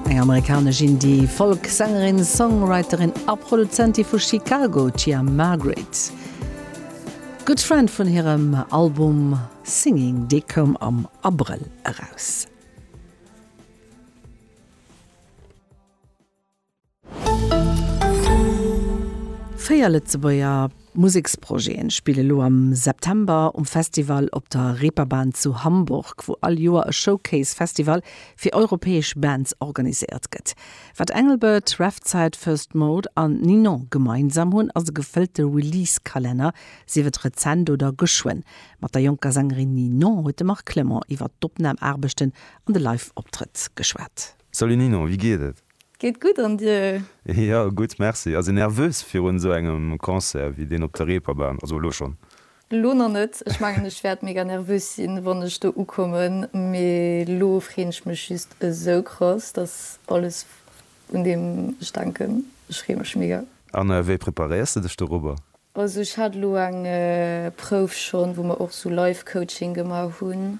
Eng amerikanesch Indie-Folk-Sängerin, Songwriterin a Produzentin vu Chicago, d'Tia Margaret. Good Friend vun hirem Album Singing, dee koum am Abrëll eraus. Véier Lëtzebuerger Museksprojete spille elo am September um Festival op der Reeperbahn zu Hamburg, wou all Joer e Showcase-Festival fir europäesch Bands organiséiert gëtt. Wat Engelbert, Revzite, First Mode an Ninon gemeinsam hunn, ass e gefëllte Release-Kalenner, sief et rezent oder geschwënn. Mat der jonker Sängerin Ninon huet de Marc Clement iwwer d'Opnam-Aarbechten an de Live-Optrëtt geschwat. Salut Ninon, wéi geet et? Geet gutt an dir? Jo gutt merci, ass een nervös virun esou engem Concert wéi deen op der Reeperbahn? Also elo schonn. Elo nach net, ech mengen ech wäert mega nervös sinn wann ech do ukommen, mee elo freen ech mech just esou krass, dass alles un deem ech denken, ech free mech mega. An wéi preparéiers de dech dorobber? Also ech hat elo eng Prouf schonn wou mer och sou Live Coaching gemaach hunn,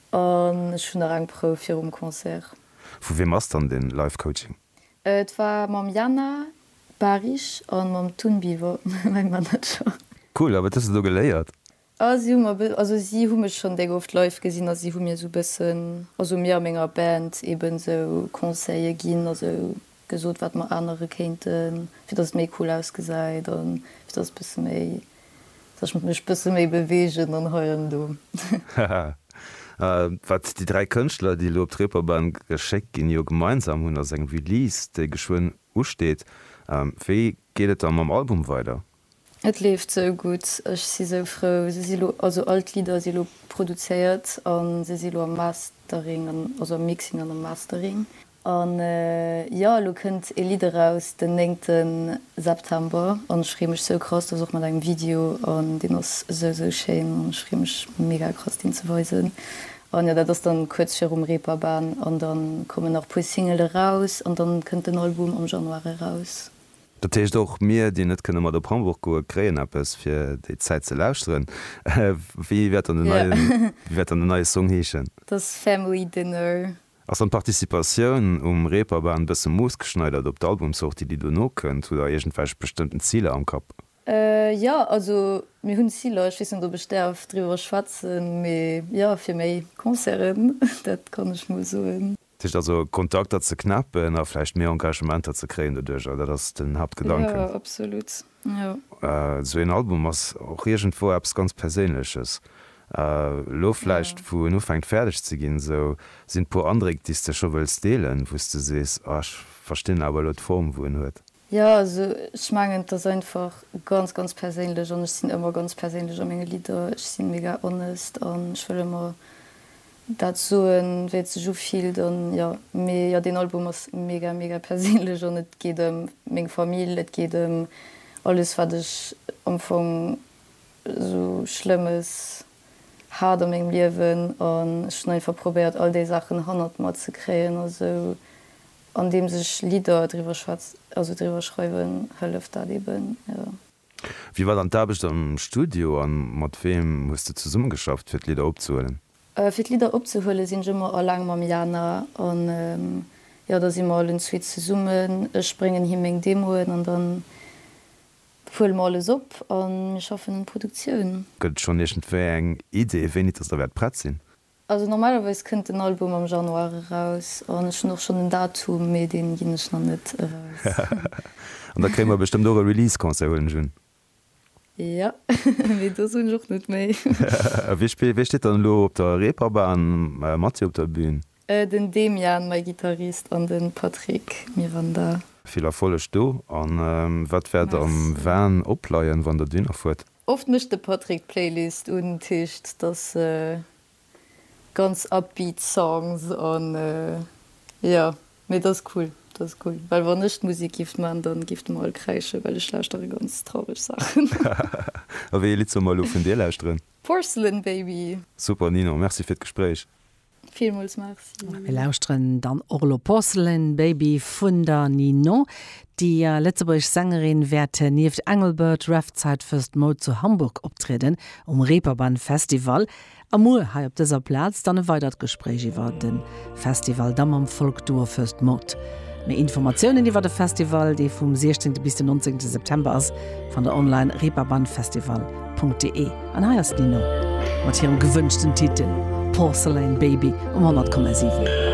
an ech hunn nach eng Prouf virum Concert. Vu wiem ass dann den Life Coaching? Et war mam Jana Bahrich an mam Tun Bivo, mäin Manager. Cool, a wat hues de do geléiert? Ah si hu mer, also si hu mech schon deng oft live gesinn a si hu mir sou bëssen, also mir a menger Band eben sou Conseille ginn a sou Gesot wat mer ännere kéinten fir dass et méi cool ausgesäit an fir dass et bësse méi, dass ech mech bësse méi beweegen an hei an do. Haha. A wat déi dräi Kënschtler déi elo op d'Reeperbahn geschéckt ginn jo gemeinsam hunn ass eng Release déi geschwënn usteet. Wéi geet et da mam Album weider? Et leeft sou gutt, ech si sou frou. Se si lo, also all d'Lidder si lo produzéiert a se si lo am Mastering an, also am Mixing an am Mastering. A jo, elo kënnt ee Lidd eraus den 9. September an ech freeë mech sou krass. Dat ass och mat engem Video an deen ass sou, sou schéin an ech freeë mech mega krass deen ze weisen. An jo, dat ass dann kuerz virum Reeperbahn an dann kommen nach e puer Single eraus an dann kënnt den Album am Januar eraus. Dat heescht, och mir, déi net kënne mat op Hamburg goen, kréien eppes, fir déi Zäit ze lauschteren. Wéi wäert dann den neien, wéi wäert dann den neie Song heeschen? Dass Family Dinner. Ass dann d'Participatioun um Reeperbahn bësse moossgeschneidert op d'Albumsortie, déi dono kënnt? Hutt der iergendwelch bestëmmten Ziler am Kapp? Jo, also mir hunn Ziler. Ech weess net, ob ech däerf driwwer schwätzen, mee jo, fir méi Concerten, dat kann ech mol soen. Dat heescht also, Kontakter ze knäppen a vläicht méi Engagementer ze kréien doduerjer, dat ass den Haaptgedanken? Jo, absolut, jo. Esou een Album ass och iergendwou eppes ganz Perséinleches. Elo vläicht, wou en ufänkt fäerdeg ze ginn, esou, sinn et puer Andréck, déi s de scho wëlls deelen, wou s de sees, ah, ech verstinn awer elo d'Form, wou en huet? Jo, also ech mengen et ass einfach ganz ganz perséinlech an ech sinn ëmmer ganz perséinlech a menge Lidder. Ech si mega honest an ech wëll ëmmer dat soen wéi et sech ufillt an jo. Mee jo deen Album ass mega mega perséinlech an et geet ëm meng Famill, et geet ëm alles wat ech am Fong esou schlëmmes hat a mengem Liewen an ech hunn einfach probéiert all déi Saachen hannert mer ze kréien a sou Andeems ech Lidder driwwer schwätz, also driwwer schreiwen, hëlleft dat eben, jo. Wéi war dann d'Aarbecht am Studio a mat weem hues de zesummegeschafft, fir d'Lidder opzehuelen? Fir d'Lidder opzehuelen, sinn ech ëmmer alleng mam Jana an, jo, da si mer allen zwee zesummen. Ech bréngen him meng Demoen an dann huele mer alles op a mir schaffen un Produktioun. Gëtt et schonn iergendwéi eng Idee, wéini dass der wäert prett sinn? Also normalerweis kënnt den Album am Januar eraus an ech hunn och schonn en Datum, mee deen ginn ech nach net eraus. An da kréie mer bestëmmt och e Release Concert, huelen ech un? Jo, mee do soen ech och net méi. A wie spillt, wie steet dann elo op der Reeperbahn mat dir op der Bühn? Den Demian, mäi Gittarist, an den Patrick Miranda. Vill Erfolleg do, an wat wäert am Van opleien wann der duhinner fuert? Oft mécht de Patrick d'Playlist un Tischt, dass se ganz upbeat Songs an jo mee dass cool, dass cool well wann ech d'Musik giff man dann giff de mer all kräische well ech lauschtere ganz traureg Saachen. A wéi ee Lidd soll mer elo vun dir lauschteren? Porcelain Baby. Super Ninon, merci fir d'Gespréich. Villmools Merci. Mir lauschteren dann och elo Porcelain Baby vun der Ninon. Déi lëtzebuergesch Sängerin wäert nieft Engelbert, Ref, Zeit fürs d'Mode zu Hamburg optrieden, um Reeperbahn Festival. A muer hei op dëser Plaz dann e weidert Gespréich iwwer de Festival, da mam Folk-Duo Fürs d'Mode. Méi Informatiounen iwwer de Festival, dee vum 16 bis den 19 September ass, fannt der online, reeperbahnfestival.de. An hei ass d'Nino mat hirem gewënschten Titel Porcelain Baby um 100,7.